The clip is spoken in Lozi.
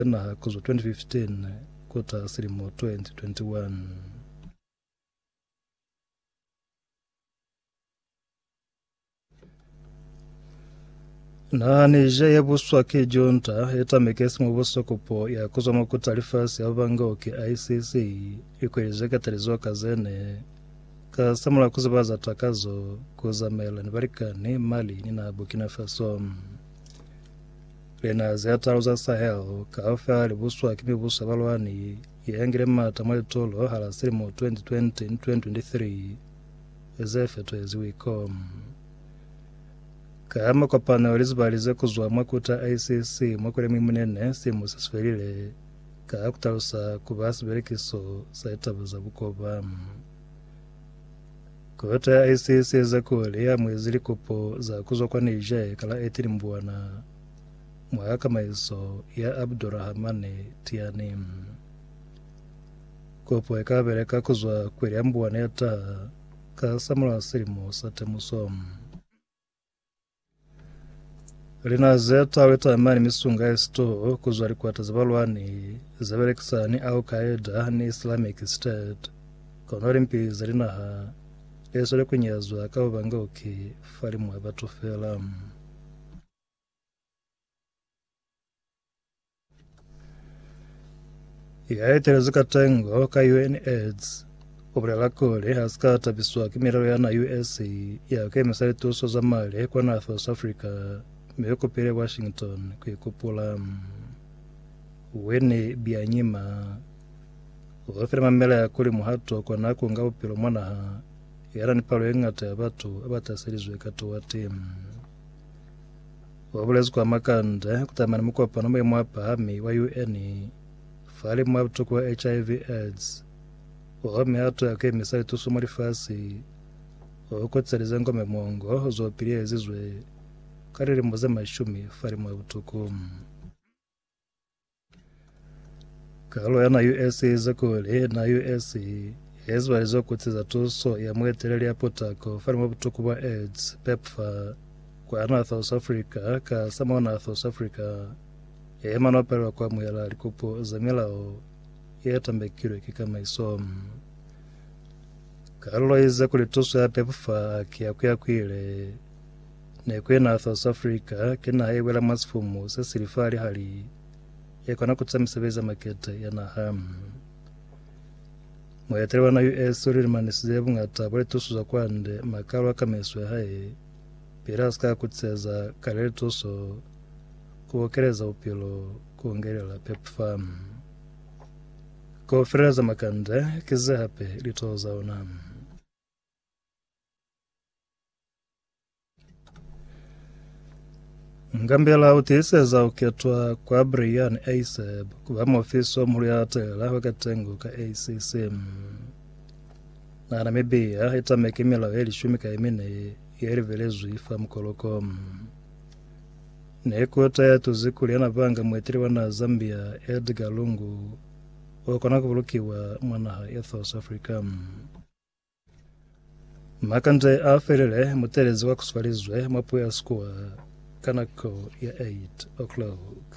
Kena ku zwa 2015 ku ta silimo 2021. Naha ni ja ya buswa ki junta e tameke simo buswa kopo ya ku zwa makuta lifasi ya banga ki ICC ikweli ze katalizo ka zene ka samula ku ziba za takazo ku zamela ni balikani Mali ni naha Burkina Faso. Linaha ze talu za Sahel kaufela li buswa ki mibuso ya balwani ye yangile mata mwa litolo hala silimo 2020 ni 2023 ze fetwezi Wicom. Ka makopano a lizibali ze kuzwa mwa kuta ICC mwa kweli ya Muimunene silimo se si felile, ka kutalusa kuba sibelekiso sa litaba za bukoba. Kota ya SS yeza kuli yamuezi likopo za kuzwa kwa Niger kala Etili Mbuana mwa kakamaiso ya Abdourahamane Tiani. Kopo eka beleka kuzwa kweli ya Mbuana ya taha kasamulaho silimo sa temuso. Lina ze twawe tamani misunga ya sitoo kuzwa likwata za balwani ze belekisa ni Al Qaeda ni Islamic State kono limpi za linaha e swele kunyazwa ka bubangauki fa limu ya batu fela. ya etelezi ka tengo ka UNAIDS o bolela kuli ha si ka tabiswa ki milelo ya na US ya ku emisa lituso za mali kwa na South Africa mi u kupile Washington ku ikupula. Winnie Byanyima o file mamelea kuli muhato kwa na ku nga bupilo mwa naha ya na ni palo ye ngata ya batu ba ba taselizwe ka tuwa ti. Wa bulezi kwa makande kutama ni mukopano mwe mwa pahami wa UN fa limu wa butuku wa HIV aids o home ha tuya ku emisa litusu mwa lifasi o kotselize ngo mwe muongo zo piliyezizwe ka lilimu ze mashumi fa limu wa butuku. Karolo ya na US e ize kuli, na US he ziba lizo kutsi za tuso ya mueteleli ya putako fani mwa butuku bwa AIDS, PEPFAR, kwa na South Africa, ka sa mo na South Africa he mano palelwa ku amuhela likupo za milao ye tambekilwe ki kamaiso. Karolo ize kuli tuso ya PEPFAR ki ya kuyakuile. Nako ye naha South Africa ki naha ye bwela mwa sifumu se sili fa lihali ye kona ku tusa misebezi ya makete ya naha. Muetele wa naha US o lilimanisize bungata bwa lituso za kwande ma kalo a kameiso ya hae pili a sika kutiseza kale lituso ku okeleza bupilo ku ngelela PepFam. Kaufela za makande ki ze hape litoho za ona. Ngambela u tiiseza u ketwa kwa Brian Eiseb ku ba muofisi wa muhulu ya latela wa katengo ka ACC. Na Namibia i tameke milao ye lishumi ka imine ye livelezwi fa mukoloko. Ne kota ya tuzi kuli yana banga mueteli wa naha Zambia Edgar Lungu o kona ku bulukiwa mwa naha ya South Africa. Makande a felele mutelezi wa kuswalizwe mwa puo ya Sekgoa ka nako ya 8 o'clock.